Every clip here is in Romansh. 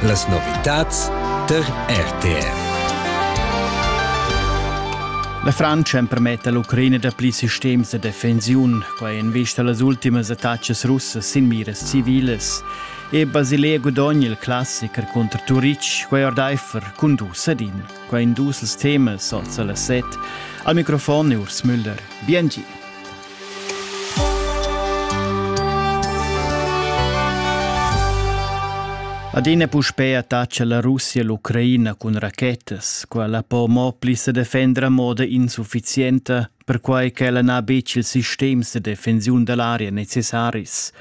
Las novitads tar RTR. La Francia empermetta l'Ucraina dapli sistems da defensiun. Quai en vista las ultimas attacas russas sin miras civilas. E Basilea gudogna il classiker contro Turic, quai ordaifer cun dus ad in. Quai in dus els temas, alza las set. Al microfon Urs Müller. Biengi. Adina puspei attacca la Russia l'Ucraina cun rachetas, quella po mo pli se defender a moda insufficienta, perquai ch'ella n'ha betg il sistem de defensiun dell'area necessaris.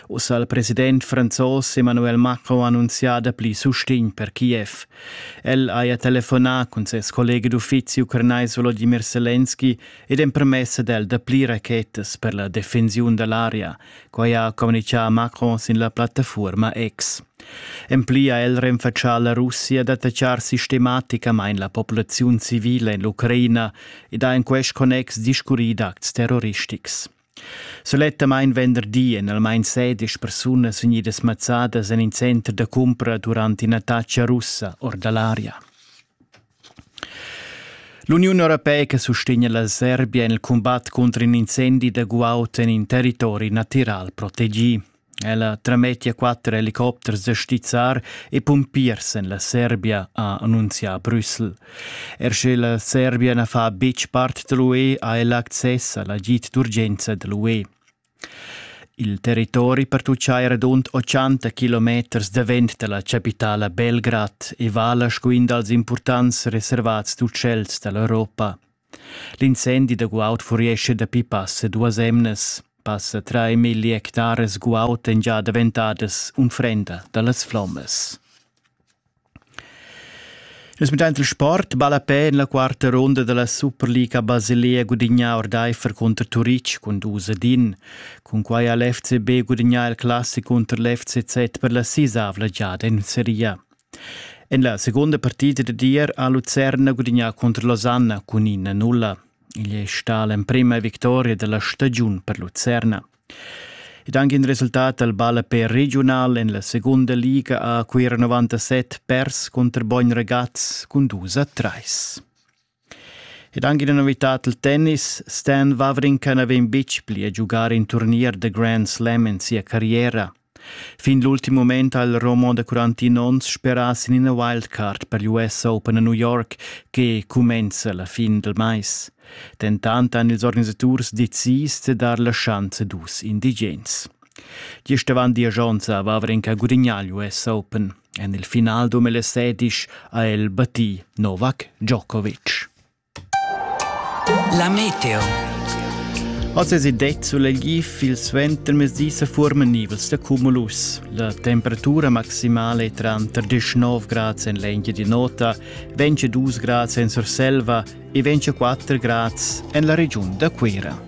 Ussa il president franzos Emmanuel Macron ha annunziato pli sustegn per Kiev. El haja telefonà cun ses collega d'uffizi ucranais Volodymyr Zelensky ed empremessa d'el dapli rachetas per la defensiun dall'aria, quai ha communichà Macron sin la plattafuorma X. En pli ha el renfatschà la Russia d'attachar sistematicamain la populaziun civila en l'Ucraina ed ha en quest connex discurrì d'acts terroristics. Sulettamain venderdi èn almain sedisch persunas vegnidas mazzadas en in center da cumpra durant in'attacca russa or da l'aria. L'Uniun europeica sustegna la Serbia en il cumbat cunter in incendi da guaud en in territori natiral protegì. Ella tramettia quatter helicopters da stizzar e pumpiers en la Serbia, ha annunzià Brüssel. Er sche la Serbia na fa betg part da l'UE, ha ella access a l'agid d'urgenza da l'UE. Il territori pertuchai radund 80 kilometers davent dalla chapitala Belgrad e vala sco in dals impurtants reservats d'utschels dall'Europa. L'incendi da guaud furiescha dapi passa duas emnas. Passa trai milli hectares guaud èn già daventadas unfrenda dallas flommas. Nus mettain il sport ballapè en la quarta runda da la Superliga Basilea gudignà ordaifer cunter Turitg cun dus ed in. Cunquai ha l'FCB gudignà il classic cunter l'FCZ per la sisavla giada en seria. En la segunda partida da dir ha Lucerna gudignà cunter Losanna cun ina nulla. Igl è stà l'emprima victoria da la stagiun per Lucerna. Ed anche in resultat dal ballapè regiunal en la segunda liga a Cuira 97 pers contro Bogn Ragaz cun 2 a 3. Ed anche una novità del tennis, Stan Wawrinka n'aveva betg pli a giocare in turnier da Grand Slam in sia carriera. Fin l'ultim mument ha il Roman da 41 onns sperà sin ina wildcard per l'US Open a New York che cumenza la fin dal mais. Dentant han ils organisaturs decis da dar la schanza dus indigens. Gist avant diesch onns a Vavrenka gudignà l'US Open. En il final 2016 ha el battì Novak Djokovic. La meteo. Oz es il det sulegli fil suentermezdi sa furmanivels da cumulus. La temperatura maximale tranter 19 grads en l'engia di nota, 22 grads en Surselva e 24 grads en la regiun da Cuira.